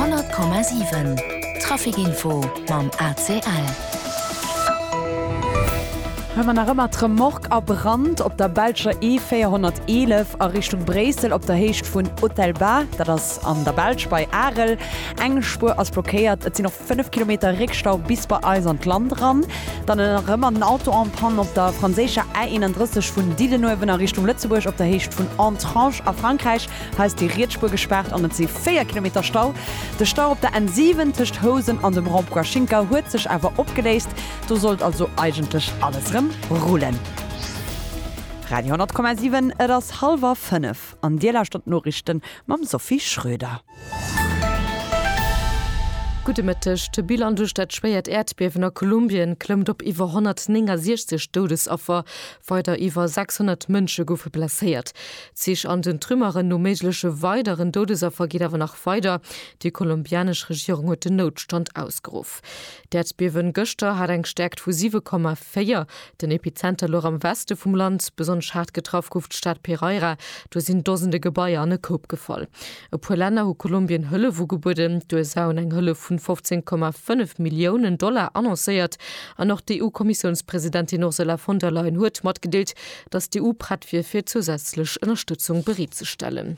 100,7 Traficinfo mam ACL. Huet mer nach ëmmer d'Remorque a Brand op der belscher E 411 a Richtung Bréissel op der Héicht vun Otelba, dat ass an der Belsch bei Arel. Eng Spuer ass blockéiert, et sinn och. 5 Kilometer Réckstau bis bei eis an d'Land eran, dann erëm an den Auto en panne op der franséischer A 31 vun Didenuewen a Richtung Lëtzebuerg op der Héicht vun Entrange a Frankräich. Hei ass déi Rietsspuer gespaart an et si 4 Kilometer Stau. De Stau op der N 7 tëscht Housen an dem Rond-point Schinker huet sech awer opgeléist, do sollt also eigentlech alles erëm rullen. Radio 10,7 Et ass hallwer 5 an Dir lauschtert d'Noriichten mam Sophie Schröder. Gudde Mëtteg. De Bilan duerch dat schwéiert Äerdbiewen a Kolumbien klëmmt op iwwer 169 Doudesaffer. Weider iwwer 600 Mënsche goufe blesséiert. D'Sich an den Trümmeren no méigleche weideren Doudesaffer geet awer nach weider. Déi kolumbianesch Regierung huet den Noutstand ausgeruff. D'Äerdbiewen gëschter hat eng Stäerkt vu 7,4. 4. Den Epizenter louch am Weste vum Land. Besonnesch haart getraff gouf d'Stad Pereira. Do sinn Dosende Gebaier an e Koup gefall. E puer Länner hu Kolumbien Hëllef ugebueden. D'USA hunn eng Hëllef vun 15,5 Milliounen Dollar annoncéiert. An och d'EU-Kommissiounspresidentin Ursula von der Leyen huet matgedeelt, datt d'EU prett wier fir zousätzlech Ënnerstëtzung bereet ze stellen.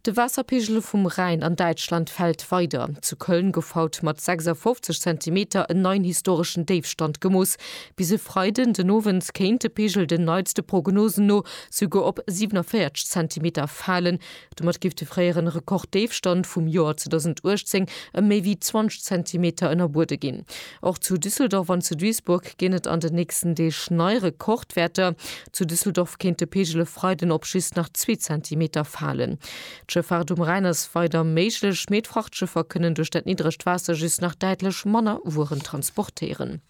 De Waasserpegel vum Rhäin an Däitschland fält weider. Zu Köln gouf haut mat 56 Zentimeter en neien historeschen Déifstand gemooss. Bis e Freiden den Owend kéint de Pegel den neitste Prognosen no souguer op 47 Zentimeter falen. Domat géif de fréieren Rekorddéifstand vum Joer 2018 ëm méi wéi 20 Zentimeter ënnerbuede ginn. Och zu Düsseldorf an zu Duisburg ginn et an den nächsten Deeg nei Rekordwäerter. Zu Düsseldorf kéint de Peegel e Freiden op just nach zwee Zentimeter falen. D'Schëffaart um Rhäin ass weider méiglech, mee d'Frachtschëffer kënnen duerch dat niddregt Waasser just nach däitlech manner Wueren transportéieren.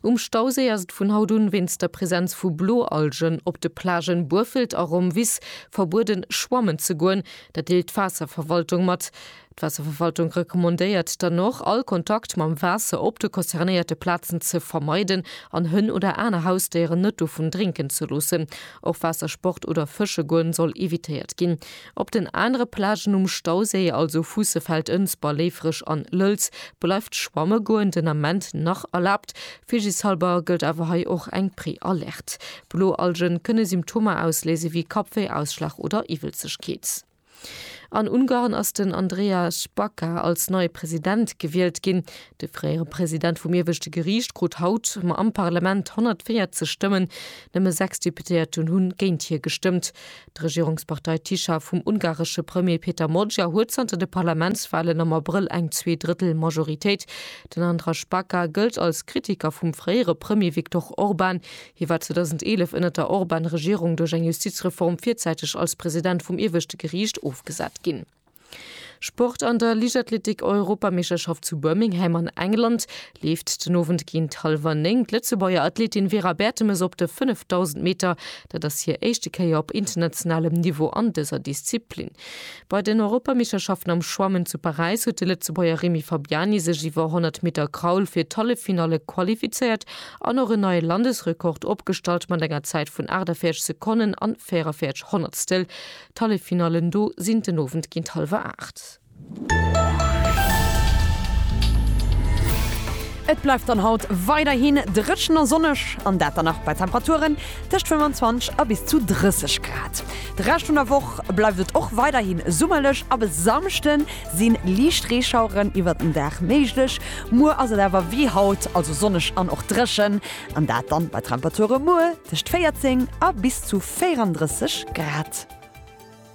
Um Stauséi ass et vun haut un wéinst der Presenz vu Bloalgen op de Plagen Burfelt a Romvis verbueden, schwammen ze goen. Dat deelt d'Waasserverwaltung mat. D'Waasserverwaltung recommandéiert dann och, all Kontakt mam Waasser op de concernéierte Plazen ze vermeiden an Hënn oder aner Hausdéieren net dovun drénken ze loossen. Och Waassersport oder Fësche goen soll evitéiert ginn. Op den anere Plagen um Stauséi, also Fuussefeld, Ënsber, Léifreg an Lëlz, bleift schwamme goen den Ament nach erlaabt. Vigishalber gëllt awer hei och eng Prealerte. Bloalgen kënne Symptomer ausléise wéi Kappwéi, Ausschlag oder Iwwelzegkeet. An Ungarn ass den Andreas Baca als neie President gewielt ginn. De fréiere President vum ieweschte Geriicht krut haut ma am Parlament 140 Stëmmen. Nëmme sechs Deputéierten hunn géint hie gestëmmt. D'Regierungspartei Tisza vum ungaresche Premier Peter Magyar huet zanter de Parlamentswalen am Abrëll eng Zweedrëttel-Majoritéit. Den Andras Baca gëllt als Kritiker vum fréiere Premier Viktor Orban. Hie war 2011 ënnert der Orban-Regierung duerch eng Justizreform virzäiteg als President vum Ieweschte Geriicht ofgesat ginn. Sport An der Liichtathletik-Europameeschterschaft zu Birmingham an England leeft den Owend géint hallwer néng d'Lëtzebuerger Athletin Vera Bertemes op de 5000 Meter. Dat ass hir éischte Kéier op internationalem Niveau an dëser Disziplin. Bei den Europameeschterschaften am Schwammen zu Paräis huet de Lëtzebuerger Remy Fabiani sech iwwer 100 Meter Kraul fir d'Halleffinalle qualifizéiert an och en neie Landesrekord opgestallt mat enger Zäit vun 48 Sekonnen an 44 Honnertstel. D'Halleffinallen do sinn den Owend géint hallwer 8. Et bleift dann haut weiderhi dréchen a sonneg, an dat dann nach bei Temperaturen tëscht 25 a bis zu 30 Grad. De Rescht vun der Woch bleift et och weiderhin summerlech. Ab e Samschden si liicht Reeschaueren iwwert den Dag méiglech. Muer ass et awer wéi haut, also sonneg an och dréchen, an dat dann bei Temperature muer tëscht 14 a bis zu 34 Grad.